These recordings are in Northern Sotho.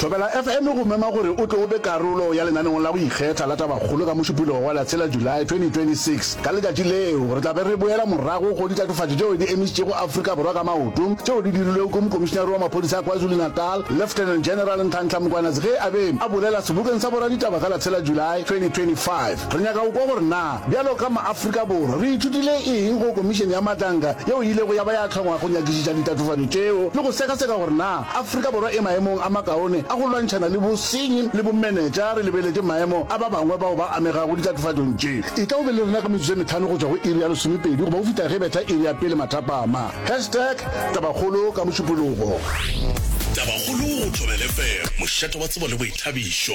Thobela FM e go mema gore o tle o be karolo ya lenaneong la go ikgetha la Tabakgolo ka Mošupologo wa Latshela, July, 2026. Ka letšatši leo, re tla be re boela morago go ditatofatšo tšeo di emišitšego Afrika Borwa ka maoto tšeo di dirilwego ke Mokomišinare wa Maphodisa a KwaZulu-Natal, Lieutenant General Nhlanhla Mkwanatsi ge a be a bolela sebokeng sa boraditaba ka Latshela, July, 2025. Re nyaka go kwa gore na bjalo ka maAfrika Borwa re ithutile eng go Komišene ya Matlanka yeo e ilego ya ba ya hlongwa go nyakišiša ditatofatšo tšeo le go sekaseka gore na Afrika Borwa e maemong a makaone a go lwantšhana le bosenyi le bomenetša re lebeletše maemo a ba bangwe bao ba amegago ditlatofatšong tše. Etla o be le rena ka metsotso e metlhano go tšwa go iri ya lesomepedi goba go fihla ge e betha iri ya pele mathapama. Hashtag Tabakgolo ka Mošupologo. Tabakgolo go Thobela FM, mošate wa tsebo le boithabišo.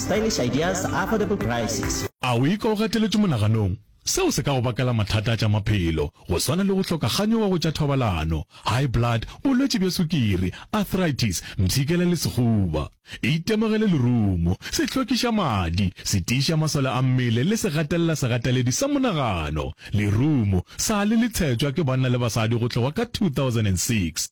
Stylish ideas, affordable prices. A o ikwa o gateletšwe monaganong? Seo se ka go bakela mathata a tša maphelo, go swana le go hloka kganyogo go tša thobalano, high blood, bolwetši bja sukiri, arthritis, mpshikela le sekhuba. Itemogele lerumo, sehlokišamadi, setiišamasole a mmele le segatelela-segateledi sa monagano. Lerumo sa le le tshetšwa ke banna le basadi go tloga ka 2006.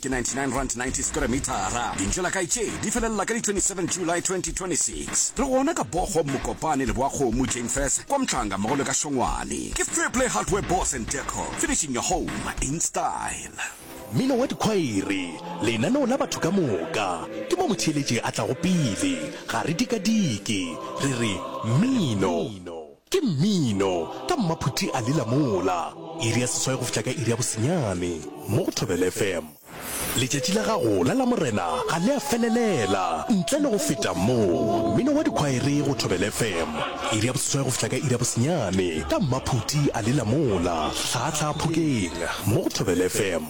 Ke 99 rand 90 square mithara. Dintšo la kae tše di felelela ka di 27 July 2026. Re gona ka Bochum, Mokopane, Leboakgomo, Jane Fess, kwa Mhlanga mmogo le ka Šongwane. Ke Fair Play Hardware Boards and Deco, finishing your home in style. Mmino wa dikhwaere, lenaneo la batho ka moka, ke mo motheeletši a tlago pele. Ga re dikadike, re re mmino. Ke mmino ka mmaphuti a lila mola. Iri ya seswai go fihla ka iri ya bosenyane mo go Thobela FM. Letšatši la gago la Lamorena ga le a felelela ntle le go feta mo. Mmino wa dikhwaere go Thobela FM. Iri ya boseswai go fihla ka iri ya bosenyane ka mmaphuti a lila mola, hlaahlaa phokeng mo go Thobela FM.